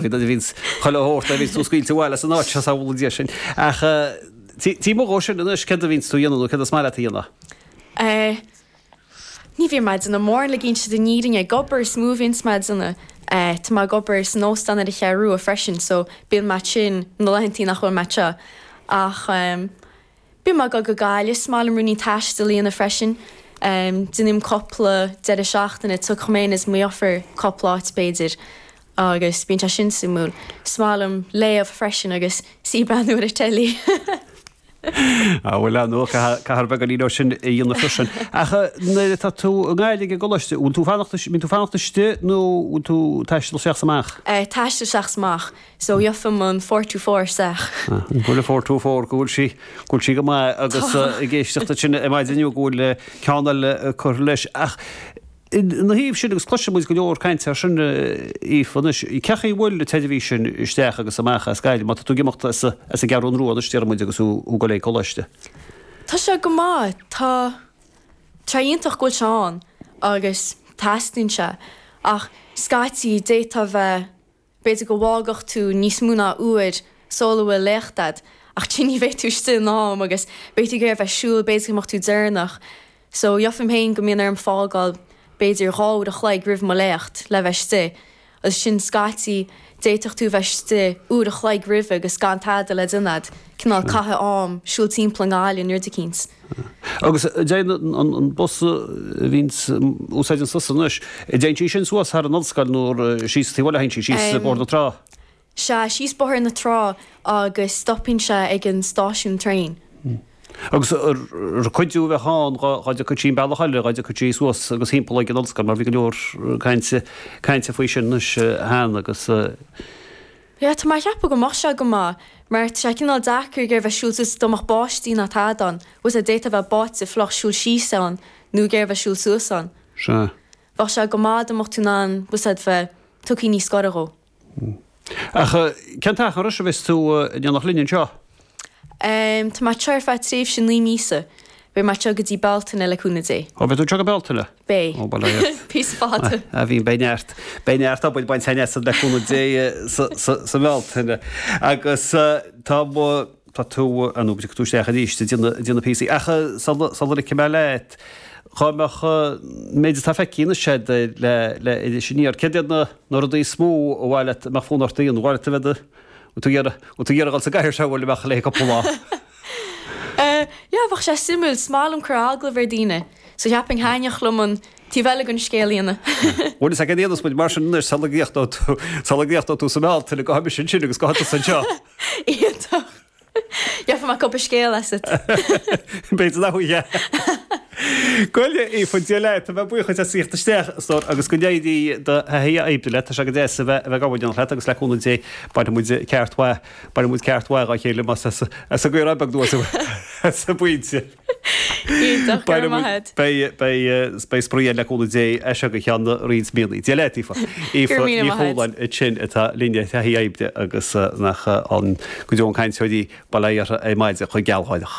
Bhí vince chuile shórt agus tú scaoilte abhaile as an áit seo samhlaigh Dia sin. Ach taobh amuigh dhó sin anois céard a bhíonns tú a dhéanamh nó céard is maith leat a dhéanamh? Ní bhíonn mé ag déanamh mórán le déanta na fírinne ag obair is mó a bhíonns mé ag déanamh. Tá mé ag obair san óstán ar an Cheathrú Rua freisin so bíonn mé ansin na laethantaí nach bhfuil mé anseo. Ach. Bím ag dul go Gaillimh, is maith liom ruainnín taistil a dhéanamh freisin. Déanaim cúpla deireadh seachtaine, tiocfaidh mé fhéin is mo dheirfiúr cúpla áit b'fhéidir agus bíonn sé sin suimiúil. Is maith liom léamh freisin agus suí ag breathnú ar an teilí. Á bhuel ar ndóigh caithfear beagáinín dhó sin a dhéanamh freisin. Ach nuair atá tú i nGaillimh ag an gcoláiste, an bhfuil tú ag fanacht istigh, mbíonn tú ag fanacht istigh nó an bhfuil tú ag taisteal isteach is amach? Ag taisteal isteach is amach. So gheobhainn an four two four isteach. An bhfuil an four two four, go bhfuil sí, go bhfuil sí go maith agus ag éisteacht duit sin ar maidin inniu go bhfuil ceann eile curtha leis. Ach ina thaobh sin, agus cloiseann muid go leor cainte ar sin, Aoife, anois, cé chaoi a bhfuil an tseirbhís sin isteach agus amach as Gaillimh, má tá tú ag imeacht as an gCeathrú Rua anois, déarfaidh muid, agus tú ag goil ag coláiste. Tá sé go maith. Tá, sé iontach go bhfuil sé ann agus teastaíonn sé. Ach scaití d'fhéadfadh a bheith. B'fhéidir go bhfágfadh tú níos mó ná uair sul a bhfuil léacht agat, ach then ní bheidh tú istigh in am agus beidh tú ag iarraidh a bheith siúl, b'fhéidir go mbeadh tú deireanach. So, gheobhainn féin go mbíonn orm fágáil b'fhéidir dhá uair a chloig roimh mo léacht le bheith istigh. Agus ansin scaití, d'fhéadfadh tú a bheith istigh uair a chloig roimhe agus gan tada le déanamh agat, cineál ag caitheamh am, siúl timpeall an bhaile, nó rud eicínt. Agus an dtéann an bus a bhíonns tú ag úsáid an sos anois, an dtéann sí sin suas thar an ollscoil nó síos taobh an bhaile a théann sí, síos Bóthar na Trá? Sea, síos Bóthar na Trá agus stopann sé ag an stáisiún traein. Agus ar cuidiú a bheadh ann, dhá dtiocfadh sí an bealach eile, dhá dtiocfadh sí suas agus thimpeall ag an ollscoil mar bhí go leor cainte faoi sin anois cheana agus. Sea, tá mé ag ceapadh go mbeadh sé go maith, mar tá sé cineál deacair ag iarraidh a bheith siúl suas dá mbeadh báisteach ná tada ann, tá a fhios agat d'fhéadfá a bheith báite fliuch siúl síos ann, nó ag iarraidh a bheith siúl suas ann. Sea. Bheadh sé go maith dá mbeadh tú in ann, tá a fhios agat a bheith tugthaí níos gaire dhó. Ach cén t-achar anois a bheas tú ag déanamh linn anseo? Tá mé anseo ar feadh tréimhse naoi míosa. Beidh mé anseo go dtí Bealtaine, le cúnamh Dé. Ó, beidh tú anseo go Bealtaine? Beidh. Ó, bhuel, aye. Píosa fada. A Bhíonn, beidh neart. Beidh neart obair bainte againn asat, le cúnamh Dé, sa mBealtaine. Agus tá mo, tá tú, ah no, tiocfaidh tú isteach arís ag déanamh na píosaí. Ach sula ligfidh mé leat, dhá mbeadh an méid atá feicthe anois agat le, le, Iris Aniar, céard iad na rudaí is mó ba mhaith leat, a mbeadh fonn ort a dhéanamh? Gur mhaith leat a bheith ag Bhfuil tú ag iarraidh dul sa gcathaoir seo le Máirtín le cúpla lá? Yeah, bheadh sé suimiúil. Is maith liom cur agallamh ar daoine, so cheapfainn thaitneodh liom an taobh eile den scéal a dhéanamh. Bhuel, tá a fhios againn mar sin anois, sula gcríochnóidh tú sa mBealtaine, go mbeimis ansin agus tusa anseo. Iontach! Déanfaidh mé cúpla scéal asat. B'fhéidir nach bhfuil, yeah. Gabh i leith Aoife, Dia leat, tá muid buíoch as a theacht isteach stór agus go n-éirí do thaithí oibre leat, tá sé go deas a bheith ag obair in éineacht leat agus le cúnamh Dé bainfidh muid ceart maith, bainfidh muid ceart maith dá chéile más as an gCeathrú Rua beag dubh as an bpointe. Iontach, go raibh maith agat. Beidh spraoi ann le cúnamh Dé as seo go ceann roinnt míonna. Dia leat, Aoife. Aoife Ní Chualáin ansin atá linn ar thaithí oibre agus nach an- go deo an cainteoir í, bail ó Dhia uirthi ar maidin chomh gealgháireach.